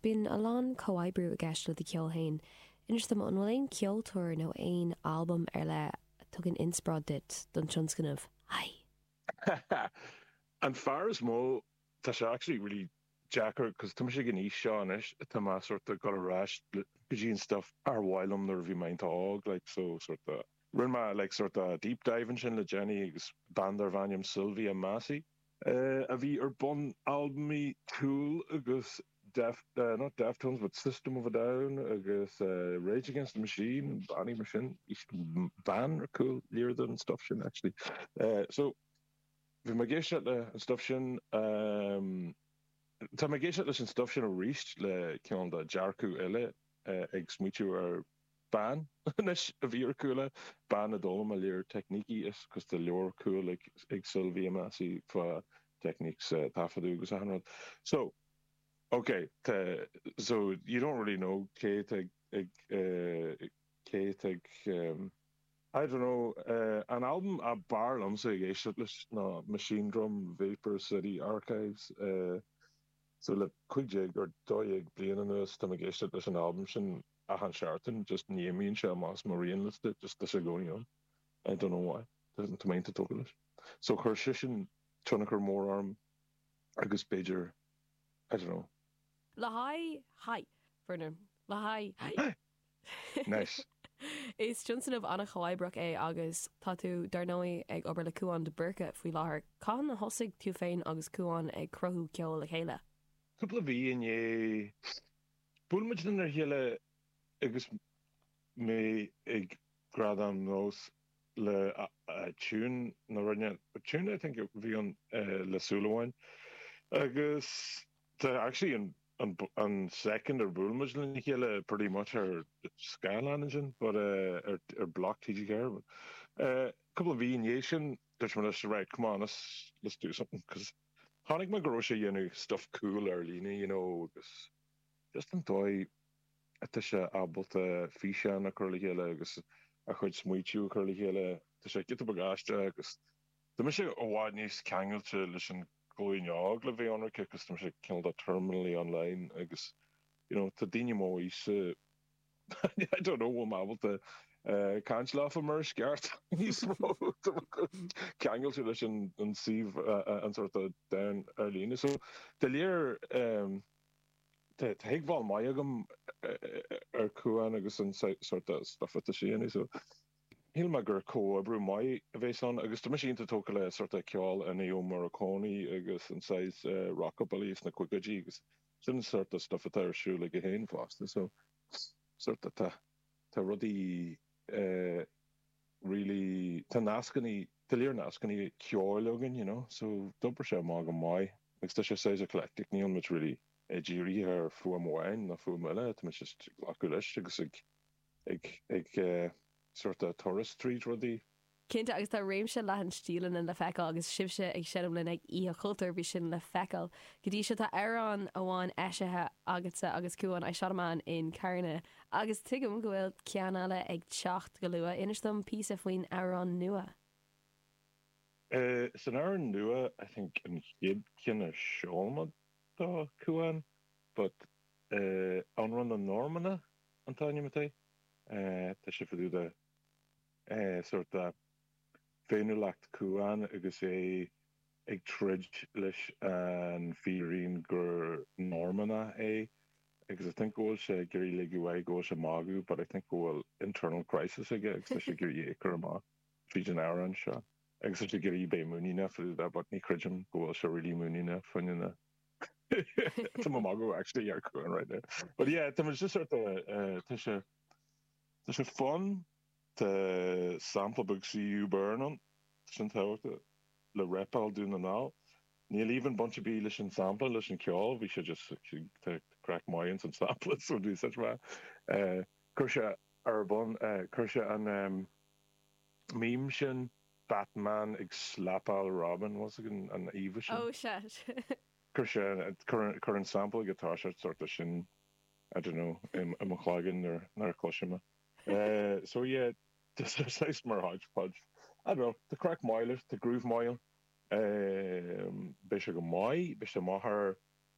Bíonn a lán comhoibriú i gceist le do cheol féin. Inis dom, an bhfuil aon ceoltóir nó aon albam ar leith a thugann inspioráid duit don tionscnamh? Haigh! An fear is mó, tá sé actually really deacair cos tá mise ag an aois seo anois atá mé sort of goil ar ais go dtí an stuff ar mhaith liom nuair a bhí mé iontach óg like so sort of rinne mé like sort of deep dive ansin le déanaí agus bean darbh ainm Sylvia Massy. a bhí ar bun albaimí Tool agus not Deftones but System of a Down agus Rage Against the Machine, bannaí mar sin, bean ar chúl lear den stuff sin actually. So bhí mé ag éisteacht le an stuff sin Tá mé ag éisteacht leis an stuff sin arís le cineál de dearcadh eile ag smaoitiú ar Bean, anois, a bhí ar chúl é, bean a d'fhoghlaim lear teicnící is cos tá leabhar cool ag Sylvia Massy fá techniques taifeadadh agus achan rud. So, ok, tá, so you don't really know cé atá ag cé atá ag ehm I don't know eh an albam ab fhearr liomsa ag éisteacht leis ná Machinedrum, Vapor City Archives eh so le 15 or 12 bliain anuas tá mé ag éisteacht leis an albam sin achan seachtain just ní imríonn sé amach as mo rianliosta just tá sé i gcónaí ann I don't know why tá mé iontach tógtha leis so chuir seisean tionchar mór orm agus b'fhéidir I don't know. le haghaidh haigh! Verna le haghaidh haigh! Nice. Is tionscnamh an-chomhoibríoch é agus tá tú, dar ndóigh, ag obair le Cúán de Búrca faoi láthair. Cathain a thosaigh tú féin agus Cúán ag cruthú ceoil le chéile? Cúpla mhí i ndiaidh. Bhuail muid lenár chéile agus mé ag Gradaim NÓS le tiún a rinne, tiún I think a bhí ann le Súil Amháin agus tá actually an second ar bhuail muid lena chéile pretty much ar scáileán ansin but ar BLOC TG4 cúpla mhí i ndiaidh sin dúirt mé leis right come on let's do something cos Chonaic mé go raibh sé a dhéanamh stuff cool ar líne you know agus just an dóigh atá sé ábalta físeáin a chur le chéile agus a chuid smaoitiú a chur le chéile tá sé giota beag aisteach agus tá mise i bhfad níos ceangailte leis an ghlúin óg le bheith ionraice cos tá mise cineál de terminally online agus you know tá daoine m'aoise I don't know, bhfuil mé ábalta caint leofa mar is ceart níos mó, ceangailte leis an suíomh an sort of domhan ar líne. So dá réir tá tuigbheáil maith agam ar Cúán agus an sort of stuff atá sé a dhéanamh. So shíl mé gur comhoibriú maith a bheas ann agus tá mise iontach tógtha le sort of ceol Ennio Morricone agus an saghas rockabilly sna caogaidí agus Sin an sort de stuif atá ar siúl aige féin fosta so sort of tá tá rudaí eh really tá nascannaí tá lear nascannaí ceoil againn you know so d'obair sé amach go maith agus tá sé saghas eclectic níl muid really ag díriú ar fuaim amháin nó fuaim eile tá muid just ag glacadh leis agus ag ag sort of turas tríd rudaí. Cinnte, agus tá réimse leathan stíleanna le feiceáil agus sibhse ag seinm linn ag Oíche Chultúir, bhí sin le feiceáil go dtí seo tá amhrán amháin eisithe agatsa agus Cúán, I Shot a Man in Carna, agus tuigim go bhfuil ceann eile ag teacht go luath. Inis dom píosa faoin amhrán nua. So an t-amhrán nua, I think an chéad cheann a seoladh do Cúán, but Amhrán na Normannach. an t-ainm atá air. Tá sé fá dtaobh de sort of féiniúlacht Chúáin agus é ag troid leis an fírinne gur Normannach é agus I think go bhfuil sé ag iarraidh ligint air go bhfuil sé ag magadh but I think go bhfuil internal crisis aige agus tá sé ag iarraidh é a chur amach tríd an amhrán seo agus tá sé ag iarraidh bheith muiníneach fá dtaobh de but ní chreidim go bhfuil sé really muiníneach faoina Tá mé ag magadh actually ar Cúán right now. But yeah, tá muid just sort of, eh, tá sé, tá sé fun. Tá sampla beag CU Burn ann, tá sin tábhachtach, le repáil Dún na nGall. Níl aon bhaint ar bith leis an sampla, leis an ceol, bhí sé just, tá craic maith ins an sampla so bhí such mhaith. Eh, chuir sé ar bun, eh, chuir sé an, em, meme sin, Batman ag slapáil Robin, once again, an íomha sin. Oh shit. Chuir sé, cuireann an sample atá sé sort of sin, I don't know, i mo chloigeann nuair a chloisim é. So yeah, just saghas mar hodgepodge. I don't know, tá craic maith leis, tá groove maith ann. Beidh sé go maith, beidh sé maith ar,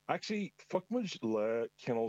actually, phioc muid lá cineál de,